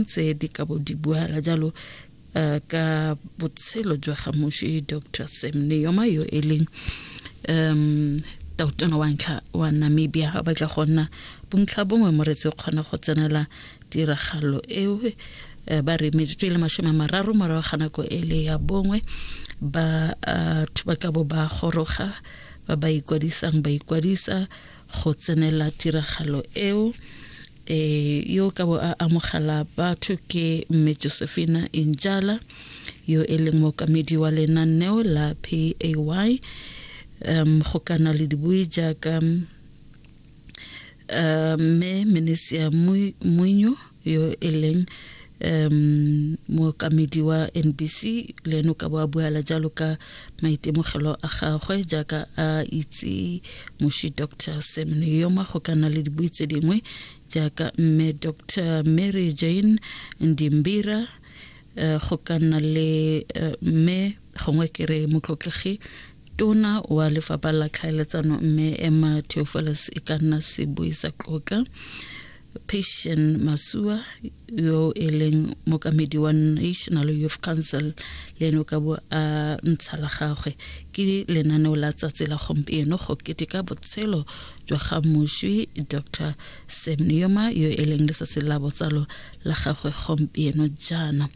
tse di ka bo di buala jalo uh, ka botshelo jwa ga moši dr sam neoma yo e leng um tautona wa ntlha wa namibia a batla go nna bontlha bongwe moretsi o kgona go tsenela tiragalo eo eh, ba re metsotso e le masome a mararo morago ga nako e le ya bongwe batho eh, ba ka bo ba goroga ba ba ikwadisang ba ikwadisa go tsenela tiragalo eo e yo ka bo a amogela batho ke mme josephina injala yo e leng mokamedi wa lenaneo la pay um go kana le dibui jaaka um, mme menisia muinyo yo e leng um mookamedi wa nbc le ene o ka bo a buala jalo ka maitemogelo a gagwe jaaka a itse moshi dr sam neyoma go ka nna le dibui tse dingwe jaaka mme dr mary jane ndimbira uh, go ka nna le eh, mme uh, gongwe ke re motlotlegi tona wa lefapha la tlhaeletsano mme emma theofeles e ka nna sebui sa tloka Patient Masua yo e leng mokamedi wa National Youth Council le ene o ka bo a ntsha la gagwe ke lenaneo la tsatsi la gompieno go keteka botshelo jwa ga moswi Dr Semnioma yo e leng letsatsi la botsalo la gagwe gompieno jaana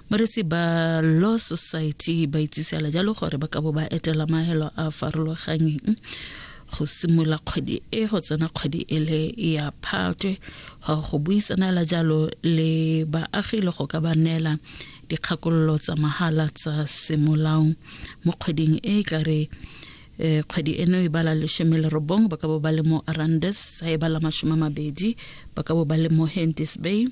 moretsi ba Law Society ba itsisela jalo gore ba ka bo ba etela maelo a farologanyeng go simolola kgwedi e go tsena kgwedi e le ya phatwe go go buisanela jalo le baagi le go ka ba neela dikgakololo tsa mahala tsa semolao mo kgweding e e tlare eh, kgwedi eno e bala lesome le robong ba ka bo ba le mo arandes sa e bala masome a mabedi ba ka bo ba le mo hentis bay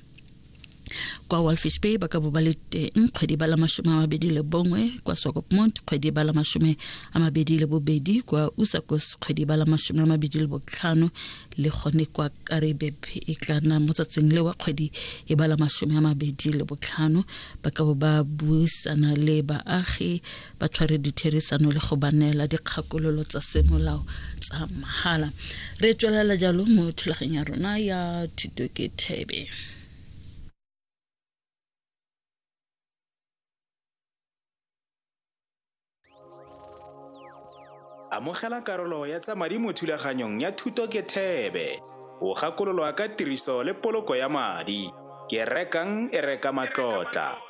kwa walfish bay ba ka bo ba le teng kgwedi ba la masome a mabedi le bongwe kwa sokopmont kgwedi ba la masome a mabedi le bobedi kwa usakos kgwedi ba la masome a mabedi le botlhano le gone kwa karibeb e tla nna mo tsatsing le wa kgwedi e ba la masome a mabedi le botlhano ba ka bo ba buisana le baagi ba tshware ditherisano le go ba neela dikgakololo tsa semolao tsa mahala re tswelela jalo mo thulageng ya rona ya thuto ke thebe amogela karolo ya tsa madi mo thulaganyong ya thuto ke thebe o gakololwa ka tiriso le poloko ya madi ke rekang e reka matlotla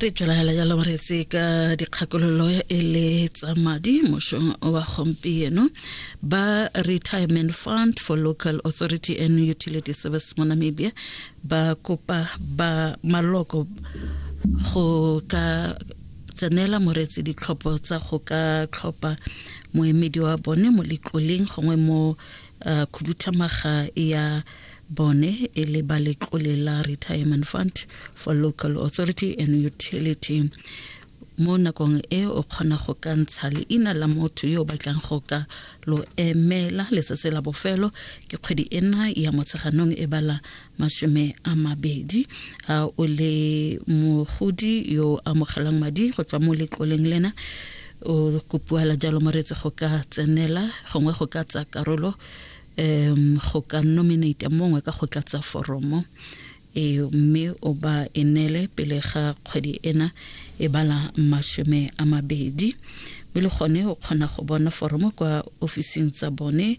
re tlalagela jalo re tse ka dikgakololo e le tsa madi mošong wa gompieno ba retirement fund for local authority and utility service mo namibia ba kopa ba maloko go ka tsenela moretsi ditlhopho tsa go ka tlhopha moemedi wa bone mo letloleng gongwe mo khuduthamaga ya bone e le ba letlole la retirement fund for local authority and utility mo nakong e o kgona go ka ntsha leina la motho yo o batlang go ka lo emela letsatsi la bofelo ke kgwedi ena ya motsheganong e bala masome a mabedi a o le mogodi yo amogelang madi go tswa mo letloleng lena o kopiwala jalo moretse go ka tsenela gongwe go ka tsa karolo um go ka nominate mongwe ka go tlatsa foromo e mme o ba e nele pele ga kgwedi ena e bala masome a mabedi mme le gone o kgona go bona foromo kwa ofising tsa bone